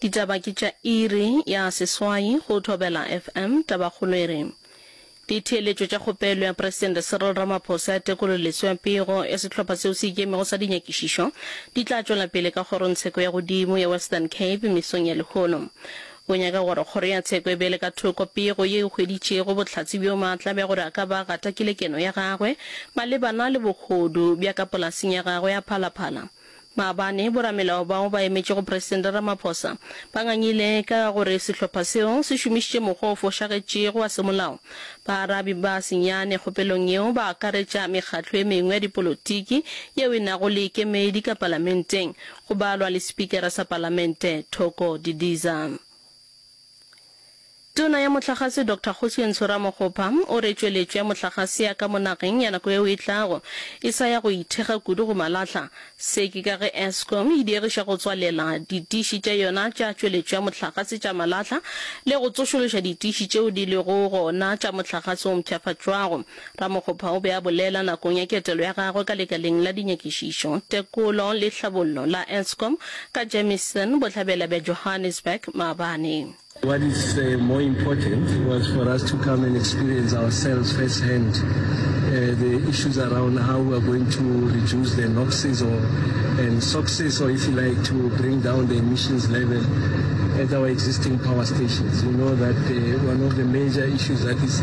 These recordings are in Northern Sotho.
Ditaba ke tša iri ya seswai go Thobela FM. Tabakgolo e re, Ditheeletšo tša kgopelo ya Presidente Cyril Ramaphosa ya tekololetso ya pego ya sehlopha seo se ikemego sa dinyakišišo di tla tšwela pele ka Kgorongtsheko ya Godimo ya Western Cape mesong ya lehono. O nyaka gore kgoro ya tsheko e beele ka thoko pego ye e hweditšego bohlatse bjo maatla bja gore a ka ba a gatakile keno ya gagwe malebana le bohodu bja ka polaseng ya gagwe ya Phala Phala. Maabane, boramelao bao ba emetšego Presidente Ramaphosa ba ngangile ka ga gore sehlopha seo se šomišitše mokgwa o fošagetšego wa semolao. Baarabi ba senyane kgopelong yeo ba akaretša mekgatlo e mengwe ya dipolotiki yeo e nago le kemedi ka palamenteng, go balwa le Spikara sa palamente Thoko Didiza. Tona ya Mohlagase Doctor Kgosientsho Ramokgopa o re tšweletšo ya mohlagase ya ka mo nageng ya nako yeo e tlago e sa ya go ithekga kudu go malahla. Se ke ka ge Eskom e diegiša go tswalela ditiši tša yona tša tšweletšo ya mohlagase tša malahla le go tsošološa ditiši tšeo di lego gona tša mohlagase o mpshafatšwago. Ramokgopa o be a bolela nakong ya ketelo ya gagwe ka Lekaleng la Dinyakišišo, Tekolo le Tlhabollo la Eskom ka Jamison, Bohlabela bja Johannesburg, maabane. What is more important was for us to come and experience ourselves first hand the issues around how we are going to reduce the noxes or and soxes or if you like to bring down the emissions level at our existing power stations. You know that one of the major issues that is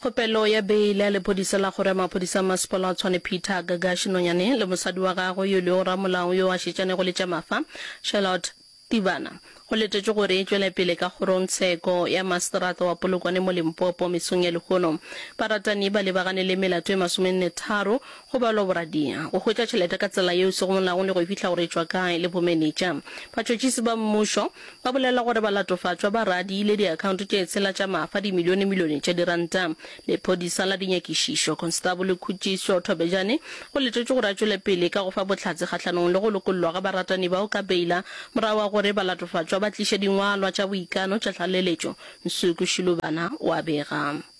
Kgopelo ya beile ya lephodisa la kgoro ya maphodisa a masepala wa Tshwane Peter Gagashi Nonyane le mosadi wa gagwe yo e lego ramolao yo a šetšanego le tša mafa Charlotte Tibana go letetšwe gore e tšwele pele ka kgorong tsheko ya maseterata wa Polokwane mo Limpopo mesong ya lehono. Baratani ba lebagane le melato e masomenne tharo Go balwa boradia, go hwetša tšhelete ka tsela yeo e sego molaong le go e fihla gore e tšwa kae le bomenetša. Batšhotšhisi ba mmušo ba bolela gore balatofatšwa ba radiile diakhaonto tše tshela tša mafa dimilionemilione tša diranta. Lephodisa la dinyakišišo, Konstabole Khutšiso Thobejane, o letetšwe gore a tšwele pele ka go fa bohlatse kgahlanong le go lokollwa ga baratani bao ka beila morago ga gore balatofatšwa ba tliše dingwalwa tša boikano tša tlaleletšo, Nsuku Shilubana o a bega.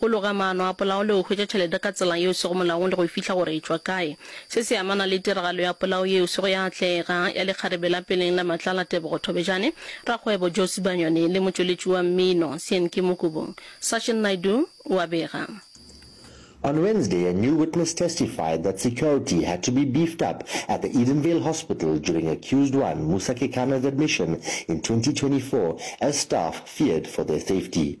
Go loga maano a polao le go hwetša tšhelete ka tsela yeo sego molaong le go fihla gore e tšwa kae. Se se amana le tiragalo ya polao yeo sego ya atlega, ya lekgarebe la peleng la Matlala Tebogo Thobejane, rakgwebo Joe Sibanyoni le motšweletši wa mmino Sienki Mokubu. Sachin Naidu o a bega. On Wednesday, a new witness testified that security had to be beefed up at the Edenvale Hospital during accused one Musa Kekana's admission in twenty twenty four as staff feared for their safety.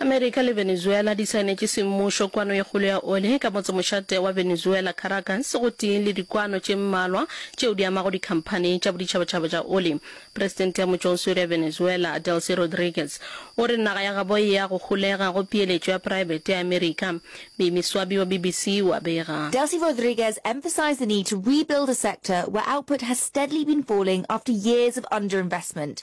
Amerika le Venezuela di saenetše semmušo kwano e kgolo ya oli ka motsemošate wa Venezuela, Caracas, gotee le dikwano tše mmalwa tšeo di amago dikhamphani tša boditšhabatšhaba tša oli. Presidente ya motšwaoswere ya Venezuela, Delcy Rodriguez, o re naga ya gabo e ya go holega go peeletšo ya praebete ya Amerika. Mimi Swabi wa BBC o a bega. Delcy Rodriguez emphasized the need to rebuild a sector where output has steadily been falling after years of underinvestment.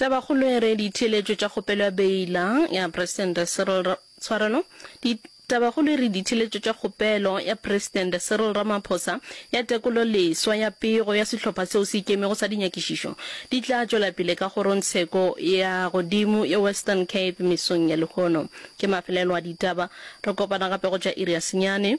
Tabakgolo e re ditheeletšo tša kgopelo ya beila ya Presidente Cyril Ra, tshwarelo, di, Tabakgolo e re ditheeletšo tša kgopelo ya Presidente Cyril Ramaphosa ya tekolo leswa ya pego ya sehlopha seo se ikemego sa dinyakišišo di tla tšwela pele ka kgorongtsheko ya godimo ya Western Cape mesong ya lehono. Ke mafelelo a ditaba. Re kopana gape go tša iri ya senyane.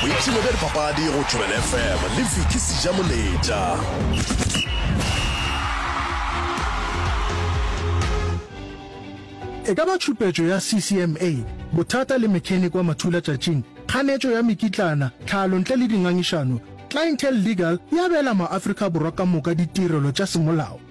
boipshino bja dipapadi go tšwelele fm le viki seja moletša e ka ba tšhupetšo ya ccma bothata le mechanic wa mathulatšatšing kganetšo ya mekitlana tlhalo ntle le dingangišano clientele legal e abela maafrika borwa ka moka ditirelo tša semolao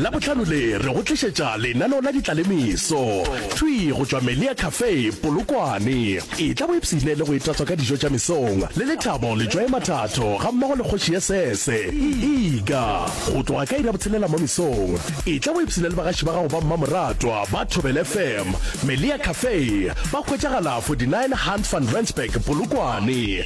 Labohlano le re go tlišetša lenaneo la ditlalemeso, thwi go tšwa Melia Cafe, Polokwane. Etla o ipshine le go itatswa ka dijo tša mesong le Lethabo Letšwae Mathatho gammogo le Kgoši ya Sese, Iga. Go tloga ka iri ya botshelela mo mesong, etla o ipshine le bagaši ba gago ba mmamoratwa ba Thobela FM. Melia Cafe ba hwetšagala 49 Hunt van Rensburg, Polokwane.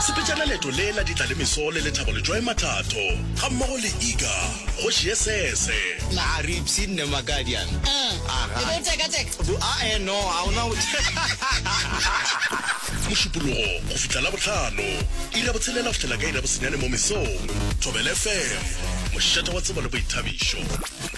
Sepetšana leeto le la ditla le meso le Lethabo Letšwae Mathatho ga mmogo le Iga kgoši ye sese. Na a re ipsene ne Makadiana? Ahh, e be o teka teka? Bu, a e no, a ona go teka. Mošupologo go fihla Labohlano, iri ya botshelela go fihlela ka iri ya bosenyane mo mesong. Thobela FM, mošate wa tsebo le boithabišo.